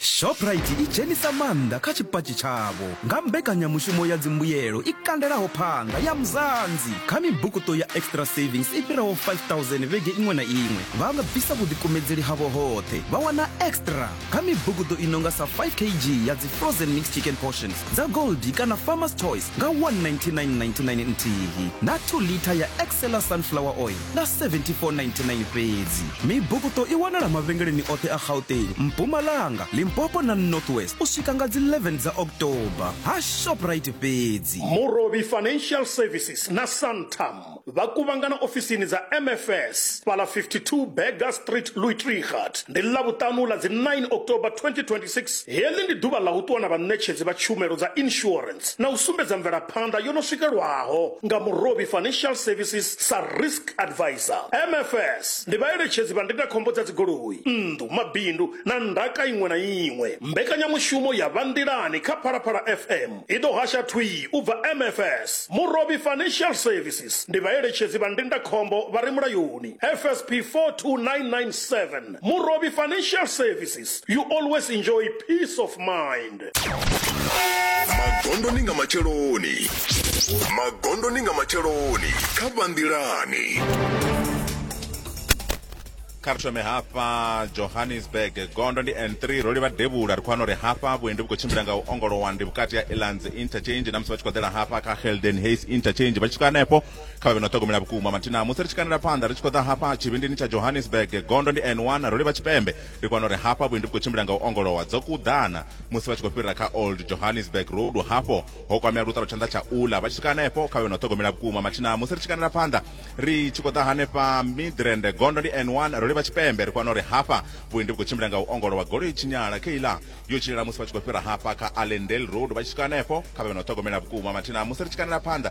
Shoprite i dzhenisa maanḓa kha tshipatshi tshavho nga mbekanyamushumo ya dzimbuyelo i kandelaho phanḓa ya Mzansi. Kha mibukuṱo ya Extra Savings i fhiraho 5000 vhege iṅwe na iṅwe, vha bvisa vhuḓikumedzeli havho hoṱhe vha wana extra kha mibukuṱo i no nga sa 5 kg ya dzi frozen mixed chicken portions dza Goldie kana Farmer's Choice nga 199.99 nthihi na 2 litha ya Excella sunflower oil na 7499 fhedzi mibukuṱo i wanala mavhengeleni oṱhe a gauteng mpumalanga limpopo na north west u swika nga dzi 11 dza october ha shoprite fhedzi Murobi Financial Services na Santam vha kuvhangana ofisini dza MFS fhala 52 Burger Street Luitrigat ndi Ḽavhuṱanu ḽa dzi 9 October 2026 Heḽi ndi ḓuvha ḽa u ṱuwa na vhaṋetshedzi vha tshumelo dza insurance na u sumbedza mvelaphanḓa yo no swikelwaho nga Murovhi Financial Services sa Risk Advisor. MFS ndi vhaeletshedzi vha ndindakhombo dza dzigoloi, nnḓu, mabindu na ndaka iṅwe na iṅwe. Mbekanyamushumo ya Vha Nḓilani kha Phalaphala FM i ḓo hasha thwii u bva MFS. Murovhi Financial Services ndi vhaeletshedzi vha ndindakhombo vha re mulayoni, FSP 42997. Murobi Financial Services, you always enjoy peace of mind. magondo ni nga matsheloni magondo ni nga matsheloni kha vhanḓilani kha ri thome hafha johannesburg gondo ndi n3 ro livha devhula ri khou wana uri hafha vhuendi vhu khou tshimbila nga u ongolowa ndi vhukati ha elands interchange na musi vha tshi khou ḓela hafha kha helden hays interchange vha tshi swika hanefho kha vhe no ṱhogomela vhukuma mathina musi ri tshi kandela phanḓa ri tshi khou ḓa hafha tshivhindini tsha johannesburg gondo ndi n1 ro livha tshipembe ndi kwana uri hafha vhuendi vhu khou tshimbila nga u ongolowa dzo kuḓana musi vha tshi khou fhirira kha old johannesburg road hafho ho kwamea luṱalo tshanḓa tsha ula vha tshi swika hanefho kha vhe no ṱhogomela vhukuma mathina musi ri tshi kandela phanḓa ri tshi khou ḓa hanefha midrand gondo ndi n1 ro livha tshipembe ri kwana uri hafha vhuendi vhu khou tshimbila nga u ongolowa golo i tshinyala kheila yo tshilela musi vha tshi khou fhira hafha kha allendale road vha tshi swika hanefho kha vhe no ṱhogomela vhukuma mathina musi ri tshi kandela phanḓa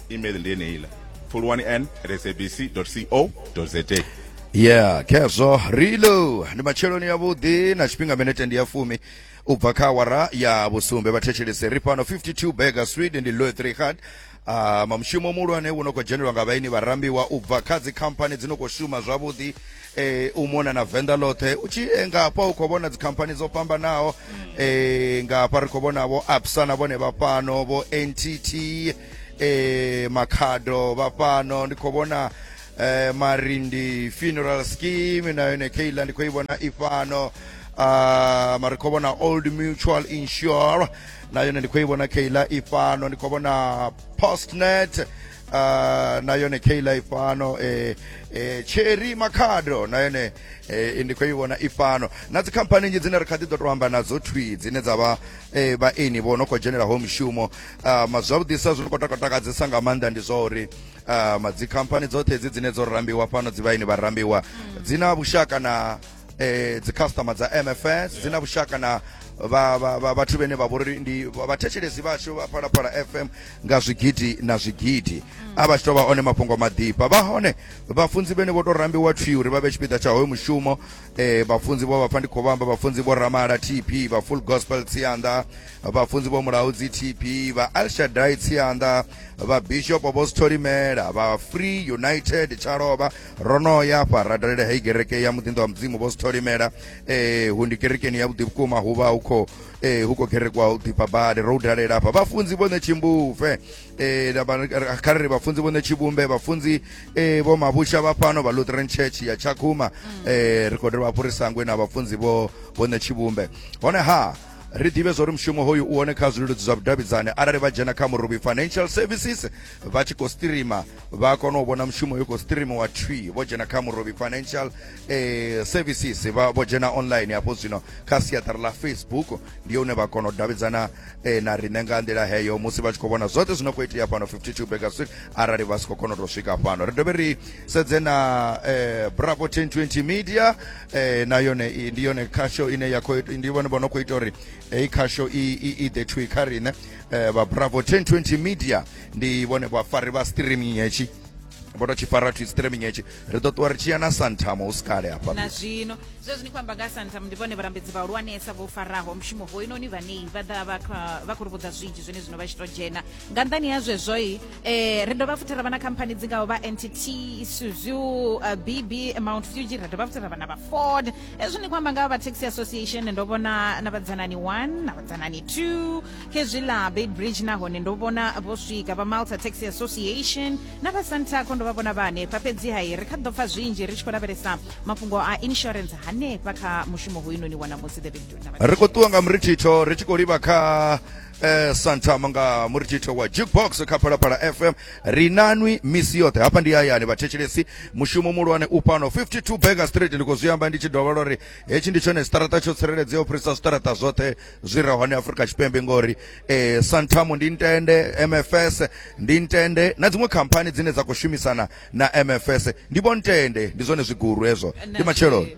email ndi yeneila pfuluwani n at sabc co za yeah khezwo rilo ndi matsheloni yavhuḓi na tshifhinga minete ndi ya fumi u bva kha awara ya vhusumbe vhathetshelese ri fhano 52 burger street ndi loe 3 hard Uh, ah, mamushumo muhulwane wo no khou dzhenelwa nga vhaini vharambiwa u bva kha dzikhamphani dzi no khou shuma zwavhuḓi eh, u mona na venḓa ḽoṱhe u tshi eh, nga hafha u khou vhona dzikhamphani dzo fhambanaho eh, nga hafha ri khou vhona vho absa na vhone vha fhano vho ntt eh makhado vha fhano ndi khou vhona eh marindi funeral scheme na yone keila ndi khou i vhona i fhano uh, mari khou vhona old mutual insure na yone ndi khou i vhona keila i fhano ndi khou vhona postnet uh, na yone keila i fhano eh, eh, cherry makhado na yone eh, ndi khou i vhona i fhano na dzikhamphani nnzhi dzine ri kha ḓi ḓo to amba nadzo thwi dzine dza vha eh, vhaeni vho no khou dzhenelaho mishumo um zwavhuḓisa zwi khou takadzesa nga maanḓa ndi zwa uri um dzikhamphani dzoṱhe dzi dzine dzo rambiwa fhano dzi vhaini vha rambiwa mm. dzi na vhushaka na eh, dzikhasitama dza mfs dzi na vhushaka na vhathu vhene vha vhori ndi vhathetshelesi vhashu vha phalaphala fm nga zwigidi na zwigidi mm. a vha tshi tovha one mafhungo maḓifha vha hone vhafunzi vhene vho to rambiwa twi uri vha vhe tshipiḓa tsha hoyo mushumo eh, vhafunzi vho vhapfa ndi khou vhamba vhafunzi vho ramala tp vha full gospel tsianda vhafunzi vho Mulaudzi TB, vha Elshaddai Tsianda, vha Bishop vho Stholimela, vha Free United Tshalovha, ro no ya afha ra dalela hei kereke ya muḓinḓo wa mudzimu vho Stholimela eh hu ndi kerekeni ya vhuḓi vhukuma hu vha hu khou eh hu khou kerekwa u ḓifha badi ro dalela afha vhafunzi vhone tshimbuve eh kha ri vhafunzi vhone tshivhumbe vhafunzi eh vho mavhusha vha fhano vha Lutheran Church ya Tshakhuma eh ri khou dovha hafhu ri sangwe na vhafunzi vho vhone tshivhumbe hone ha ri ḓivhe zwa uri mushumo hoyu u hone kha zwileludzi zwa vhudavhidzani arali vha dzhena kha muruvhi financial services vha tshi khou streama vha kona u vhona mushumo yo khou streamiwa twi vho dzhena kha muruvhi financial eh, services vha vho dzhena online hafho zwino kha siaṱari ḽa facebook ndi hune vha kona u davhidzana eh, na riṋe nga nḓila heyo musi vha tshi khou vhona zwoṱhe zwino khou itea fhano 52 baker street arali vha si khou kona u tou swika fhano ri dovhe ri sedze na eh, bravo 1020 media eh na yone i- ndi yone khasho ine ya khou ndi vhone vho no khou ita uri heyi khasho i i- i ḓe thwi kha riṋe eh, vha bravo 1020 media ndi vhone vhafari vha streaming hetshi vho tou tshi fara thwi streaming hetshi ri ḓo ṱuwa ri tshi ya na santamo hu si kale hafha na zwino zwezwi ni khou amba nga santam ndi vhone vhalambedzi vhahulwanesa vho faraho mushumo hoyinoni vhanei vha ḓa vha kha- vha khou ri vhudza zwinzhi zwine zwino vha tshi to dzhena nga nṱhani ha zwezwoi eh, ri dovha futhi ra vha na khamphani dzi ngaho vha ntt suzu uh, eh, bb mount fuji ra dovha futhi ra vha na vha ford hezwi ni khou amba nga vha taxi association ndo vhona na vhadzanani one na vhadzanani two khezwi ḽa bay bridge nahone ndo vhona vho swika vha malta taxi association na vha santaco ndo vha vhona vha hanefha fhedzi hai ri kha ḓo pfa zwinzhi ri tshi khou lavhelesa mafhungo a insurance hanefha kha mushumo hoyunoni wa namusi the big ri khou ṱuwa nga murithitho ri tshi khou livha kha eh, santa manga muri tito wa jukebox kha phalaphala fm ri nanwi misi yoṱhe hafha ndi hayani vhathetshelesi mushumo muhulwane u fhano 52 baker street ndi khou zwi amba ndi tshi dovha lwa ri hetshi ndi tshone siṱaraṱa tsho tsireledzeaho u fhirisa siṱaraṱa zwoṱhe zwi re hone afrika tshipembe ngori eh, santamo ndi ntende mfs ndi ntende na dziṅwe khamphani dzine dza khou shumisana na mfs ndi vho ntende ndi zwone zwiguru hezwo ndi matsheloni